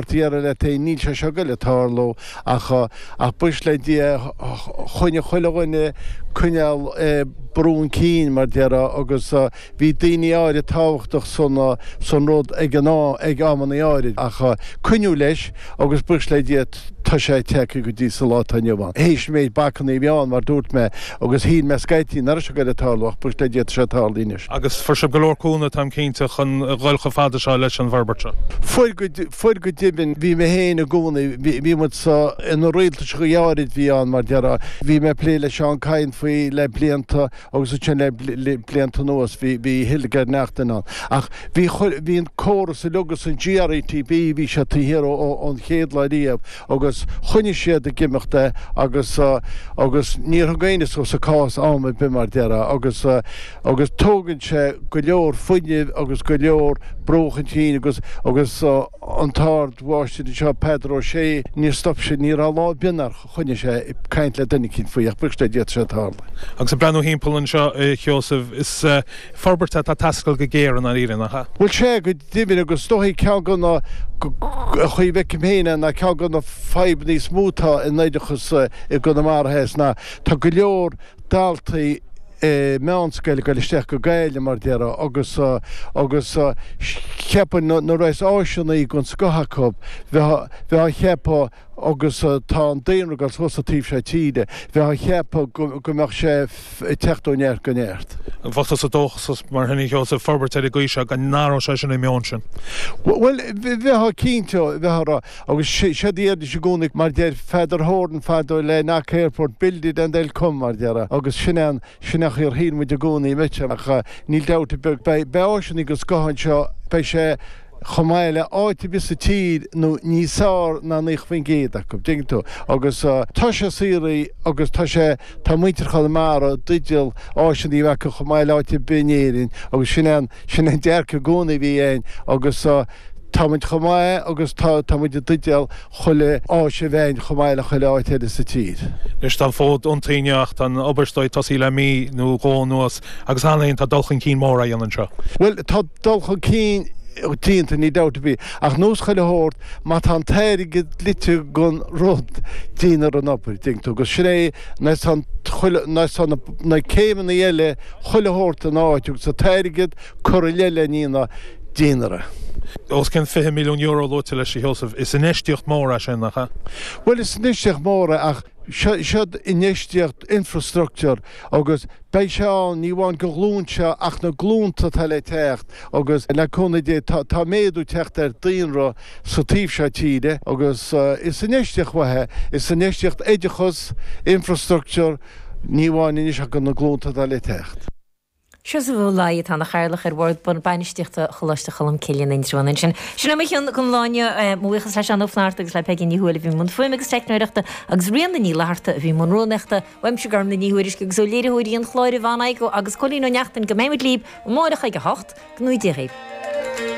Déarfá leat féin níl sé seo ag goil ag tarlú ach ach buíochas le Dia choinnigh chuile dhuine coinneáil ag brú chun cinn mar déarfá agus bhí daoine áirid tábhachtach san san rud ag an am ag amannaí áirid ach coinníodh leis agus buíochas le Dia tá sé tagtha go dtí sa lá atá inniu ann. Théis méid bacannaí a bhí ann mar dúirt mé agus shíl mé scaití nach raibh seo ag goil ag tarlú ach buíochas le Dia tá sé tarlaithe anois. agus fuair sibh go leor cúnamh, tá mé cinnte, chun a dhul chomh fada seo leis an bhforbairt seo. Fuair, fuair go deimhin. Bhí mé féin i gcónaí, bhí, bhí muid sa, ina rialtais go háirid, bhí ann, mar déarfá, bhí mé ag plé le Seán Kyne faoi le blianta agus ansin le, le blianta anuas bhí, bhí Hildegarde Naughton ann. Ach bhí, chuir, bhí an córas uilig agus an GRETB, bhí siad taobh thiar ó, ó, ón chéad lá riamh. agus choinnigh siad ag imeacht é agus agus níor thug éinne suas an cás am ar bith mar déarfá agus agus tógann sé go leor fuinnimh agus go leor brú chun cinn agus agus an t-ardmháistir anseo Peadar Ó Sé níor stop sé ní raibh lá ar bith ann nár choinnigh sé ag caint le duine eicínt faoi ach buíochas le Dia tá sé tarlaithe. Agus ag breathnú thimpeall anseo a Sheosaimh is forbairt atá ag teastáil go géar i ndáiríre nach ea? Bhuel sé go deimhin agus is dóichí ceann de na chaoi a bhfeicim féin é ná ceann de na fadhbanna is mó atá in oideachas i gConamara Theas ná tá go leor daltaí meánscoile ag dul isteach go Gaillimh mar déarfá agus agus cheapfá nuair a bheas áiseannaí den scoth acu bheifeá ag ceapadh agus tá an daonra ag dul suas sa taobh seo tíre, bheifeá ag ceapadh go mbeadh sé ag teacht ó neart go neart. An bhfuil tusa dóchasach mar shin, a Sheosaimh, forbairt ar an gcaoi seo, go n-athródh sé sin an meon sin? Bhuel, bheifeá cinnte, bheifeá ag rá, agus séard a deiridís i gcónaí, mar deir Father Horan fadó le Knock Airport, Build it and they'll come, mar déarfá, agus sin é an, sin é an chaoi ar shíl muid i gcónaí, an mbeidh sé? Ach níl dabht ar bith, beidh, beidh áiseannaí den scoth anseo, beidh sé. chomh maith le áit ar bith sa tír nó níos fearr ná 90% acu, dtuigeann tú, agus tá sé saothraithe agus tá sé, tá muintir Chonamara i dteideal áiseanna a bheith acu chomh maith le áit ar bith in Éirinn agus sin an, sin an dearcadh i gcónaí a bhí againn agus tá muid chomh maith agus tá, tá muid i dteideal chuile áis a bheith againn chomh maith le chuile áit eile sa tír. Anois tá an fód iontaithe inniu ach tá an obair, is dóigh, tosaithe le mí nó dhó anuas agus cheana féin, tá dul chun cinn mór á dhéanamh anseo. Bhuel, tá. dul chun cinn déanta, níl dabht ar bith, ach nós chuile shórt, má tá an t-airgead dlite don rud, déantar an obair, dtuigeann tú, agus sin é nós tá an chuile, nós tá na céimeanna eile chuile shórt ina áit agus an t-airgead curtha i leith lena dhéanamh, déantar é. Os cionn €20 milliún luaite leis, a Sheosaimh, is infheistíocht mhór é sin, nach ea? Bhuel, is infheistíocht mhór é ach seo, seo infheistíocht infreastruchtúr agus Beidh sé ann, ní amháin don ghlúin seo ach na glúnta atá le teacht agus le cúnamh Dé tá méadú ag teacht ar daonra sa taobh seo tíre agus is infheistíocht mhaith é, infheistíocht oideachas, infrastructure, ní amháin anois ach do na glúnta atá le teacht. Seosamh Ó Laighin atá ina Chathaoirleach ar Bhord Bainistíochta Choláiste Cholmcille in Indreabhán ansin. Sin é mo chion chun lá inniu. Mo bhuíochas le Seán Ó Flaithearta agus le Peigí Ní Shúilleabháin i mbun fuaime agus teicneoireachta agus Ríona Ní Fhlatharta a bhí i mbun rúnaíochta. Uaimse Gormfhlaith Ní Thuairisg agus ó léiritheoirí an chláir Yvonne Aigo agus Cóilín Ó Neachtain go mbeimid libh amárach ag a hocht, go n-éirí Dé dhaoibh.